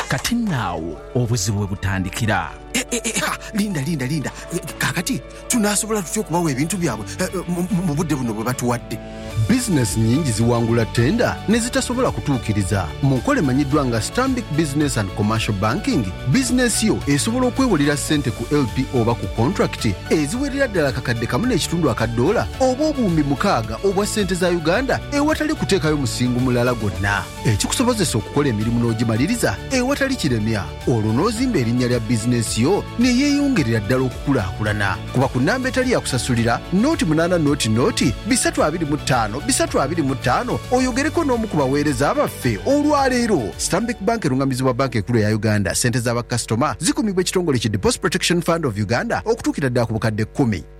Kati nno agho obuzibu we butandikira. E-e-e-ha! Linda, linda, linda. Kaakati, tunaasobola tutya okubagho ebintu byabwe mu, mu budde buno bwe batuwadde? Bizinesi nyingi ziwangula ttenda ne zitasobola kutuukiriza. Mu nkola emanyiddwa nga Stanbic Business and Commercial Banking, bizinesi yo esobola okwewolera ssente ku LPO oba ku kontulakiti eziwerera ddala akakadde kamu n'ekitundu aka ddoola oba obuwumbi mukaaga, obwa sente za Uganda ewatali kuteekayo musingo mulala gwonna, ekikusobozesa okukola emirimu n'ogimaliriza ewatali kiremya olwo n'ozimba erinnya lya bizinensi yo ne yeeyongerera ddala okukulaakulana. Kuba ku nnamba etali ya kusasulira, nooti munaana nooti nooti bisatu abiri mu ttaano bisatu abiri mu ttaano oyogereko n'omu ku baweereza baffe olwaleero. Stanbic Bank erung'amizibwa Bbanka Enkulu eya Uganda. Ssente za bakasitoma zikumibwa ekitongole ki Deposit Protection Fund of Uganda okutuukira ddala ku bukadde kkumi.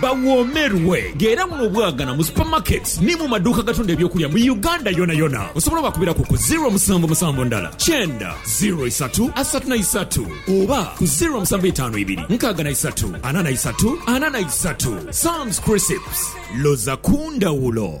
Bawoomerwe nga era buno bwagana mu supermarkets ni mu maduuka agatunda eby'okulya mu Uganda yonayona. Osobola obakubiraku ku ziro musanvu musanvu ndala kyenda ziro isatu asatu na isatu oba ku ziro musanvu itaanu ibiri nkaaga na isatu ana na isatu ana na isatu. Sam's Crisps, loza ku ndhawulo.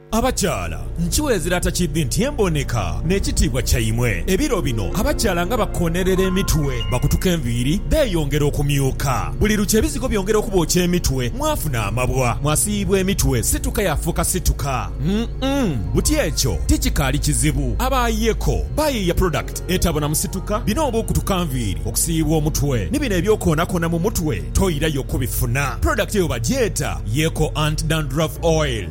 Abakyala, nkiwa ezira atakiidhi nti emboneka n'ekitiibwa kyaimwe. Ebiro bino abakyala nga bakoonerera emitwe, bakutuka enviiri, beeyongera okumyuka. Buli lukya ebizigo byongera okubookya emitwe, mwafuna amabwa, mwasiiyibwa emitwe, situka yafuuka situka. Umm buti ekyo tikikaali kizibu. Abaayeeko bayiiya product etabonamu situka, bino oba okutuka nviiri, okusiiyibwa omutwe ni bino eby'okwoonakoona mu mutwe toirayo kubifuna. Product eyo bagyeta Yeeko Anti Dandruff Oil.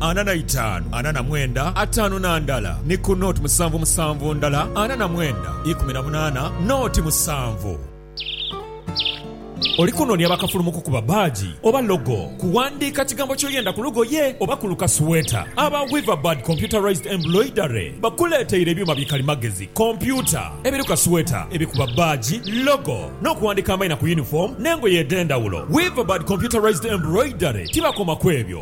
ana na itaanu, ana na mwenda, ataanu na ndala, ni ku noti musanvu musanvu ndala, ana na mwenda, ikumi na munaana, noti musanvu. Oli kunoonia bakafulu mu kukuba baaji oba logo, kuwandiika kigambo ky'oyenda ku lugoye oba ku lukasweeta? Aba Weaverbird Computerized Embroidery bakuleeteire ebyuma bi kalimagezi, kompyuta, ebiru kasweeta, ebikuba baaji, logo, n'okuwandiika amaina ku yunifoomu n'engoye edh'endhawulo. Weaverbird Computerized Embroidery tibakoma kwebyo.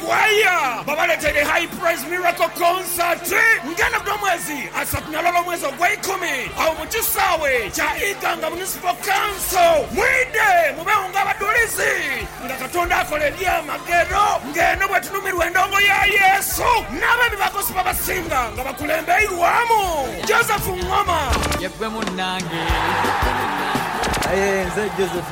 Kwaya babaleteire High Praise Miracle Concert nga eno buli omwezi asatu nalwala omwezi ogweikumi agho mu kisaawe kya Iganga Municipal Council. Mwidhe mubewo nga abadhulizi nga Katonda akola ebyamagero nga eno bwetunumirwa endongo ya Yesu n'abebibago sibabasinga nga bakulembeirwamu Joseph Ngoma. Yeggwe munnange. Aye nze Joseph.